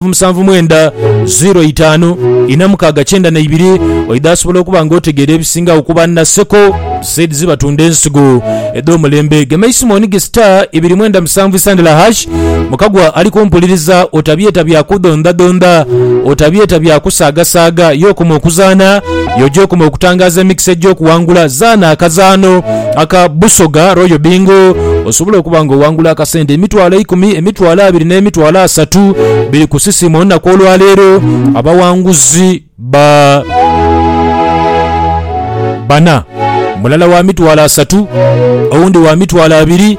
nhanvu musanvu mwenda ziro itaanu ina mukaaga kyenda na ibiri oidha asobola okuba nga otegeera ebisingagho ku ba Naseko Seeds batunda ensigo edh'omulembe gema isimu onige star ibiri mwenda musanvu isandala hash mukagwa ali kumpuliriza otabyeta bya kudhondhadhondha otabyeta bya kusaagasaaga ye okoma okuzaana y'oja okoma okutangaaza emikisa egy'okuwangula zaana akazaano aka Busoga Royal Bingo osobola okuba nga owangula akasente emitwalo eikumi, emitwalo abiri n'emitwalo asatu biri ku sisiimu olunaku olwaleero. Abawanguzi ba bana, mulala wa mitwalo asatu, owundi wa mitwalo abiri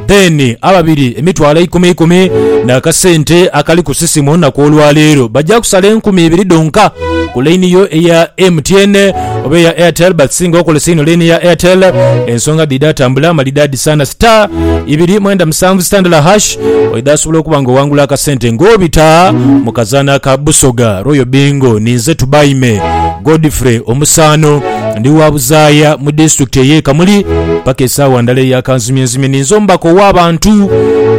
then ababiri emitwalo eikumi ikumi n'akasente akali ku sisiimu olunaku olwaleero. Baja kusala enkumi ibiri dhonka ku laini yo eya MTN. oba eya airtel but singa okozesa ino line ya airtel ensonga dhidha tambula malidadi sana star ibiri mwenda musanvu star ndala hash oidha asobola okuba nga owangula akasente nga obita mukazana aka busoga royal bingo ninze tubaime godfrey omusaano ndi wa buzaaya mu district eye kamuli paka esaawa ndala eya kanzimye nzimye ninze omubaka owa bantu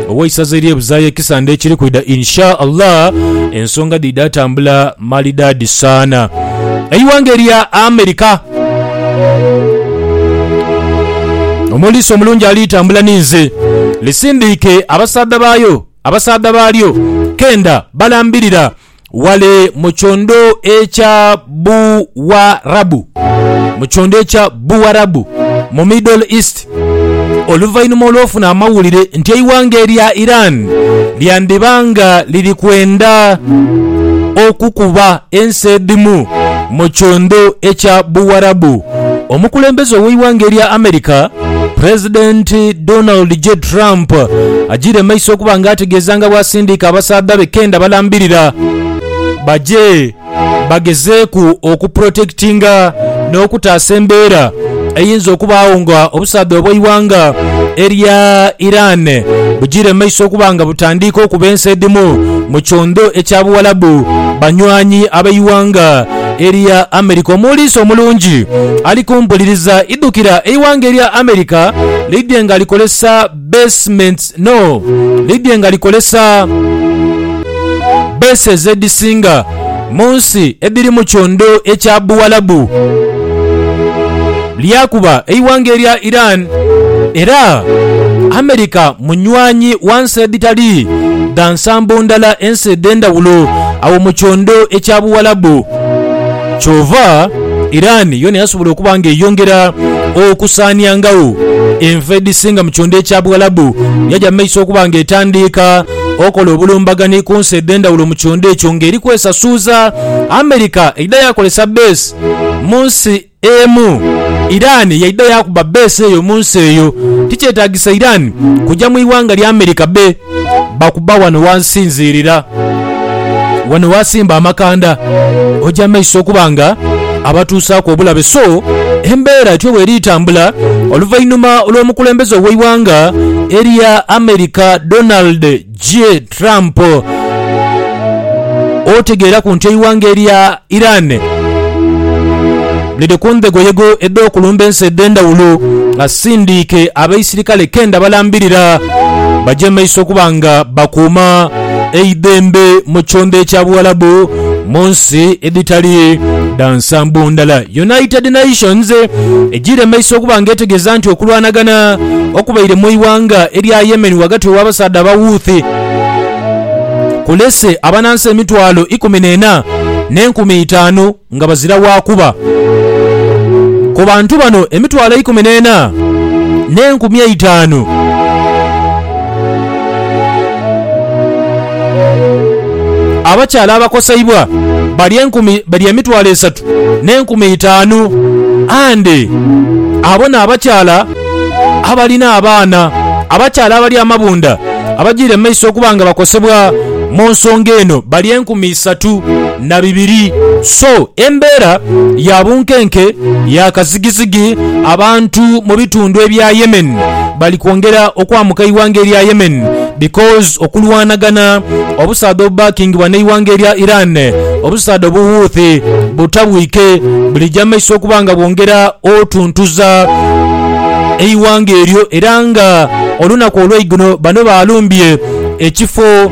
oweisaza erye buzaaya ekisande ekiri kwidha insha allah ensonga dhidha tambula Malidaadi saana. Eighanga erya America. Omuliisa omulungi ali tambula ni nze. Lisindiike abasaadha baayo, abasaadha baalyo kenda balambirira wale mu kyondo ekya Buwarabu, mu kyondo ekya Buwarabu, mu Middle East. oluvainhuma olw'ofuna amawulire nti eighanga erya Iran lyandiba nga liri kwenda okukuba ensi edhimu mu kiundhu ekya Buwarabu, omukulembeze ow'eighanga erya America President Donald J. Trump ajiire mu maiso okuba nga ategeeza nga bwasindiika abasaadha be kenda balambirira baje. bagezeeku okupulotekitinga n'okutaasa embeera eyinza okubaagho nga obusaadha obw'eighanga erya Iran bujiire mu maiso okuba nga butandiika okuba ensi edhimu mu kyondho ekya Buwalabu banywanyi ab'eighanga erya America. Omuwuliisi omulungi ali ku mpuliriza idhukira eighanga erya America lidhye nga likozesa Basements no lidye nga likolesa bases edhisinga mu nsi edhiri mu kyondo ekya Buwalabu. Lyakuba eighanga erya Iran era America munywanyi wa nsi edhitali dha nsambo ndala ensi edh'endhawulo agho mu kyondo ekya Buwalabu. Kyova Iran yoona yasobola okuba nga eyongera okusaaniangagho enfa edhisinga mu kyondha ekya Buwalabu, yaja mu maiso okuba nga etandiika okola obulumbagani ku nsi edh'endhawulo mu kyondha ekyo nga eri kwesasuuza. America eidha yaakolesa bbeesi mu nsi emu, Iran yaidha yaakuba bbeesi eyo mu nsi eyo. Tikyetaagisa Iran kuja mu ighanga lya America be. Bakuba wano wansinziirira, wano wasimba amakanda, oja maiso okuba nga abatuusaaku obulabe. So embeera etyo bweri etambula oluvainhuma lw'omukulembeze ow'eighanga erya America Donald J. Trump otegeeraku nti eighanga erya Irani liri ku ndhegoyego edh'okulumba ensi edh'endhawulo asindiike abaisirikale kenda balambirira baje mu maiso okuba nga bakuuma eidhembe mu kyondo ekya Buwalabu mu nsi edhitali dha nsambo ndala. United Nations ejiire mu maiso okuba nga etegeeza nti okulwanagana okubaire mu ighanga erya Yemen ghagati gh'abasaadha aba Houthi, kulese abanansi emitwalo ikumi n'ena n'enkumi itaanu nga bazira wa kuba. Ku bantu bano emitwalo eikumi n'ena n'enkumi eitaanu, abakyala abakoseibwa bali emitwalo esatu n'enkumi itaanu. And abo n'abakyala abalina abaana, abakyala abali amabunda abajiire mu maiso okuba nga bakosebwa mu nsonga eno bali enkumi isatu na bibiri. So embeera ya bunkenke ya kazigizigi abantu mu bitundu ebya Yemen bali kwongera okwamuka eighanga erya Yemen. Because okulwanagana obusaadha obubackingibwa n'eighanga erya Iran, obusaadha obu Houthi butabwike bulija mumaiso okuba nga bwongera otuntuza eighanga eryo era nga olunaku olweigulo bano balumbye ekifo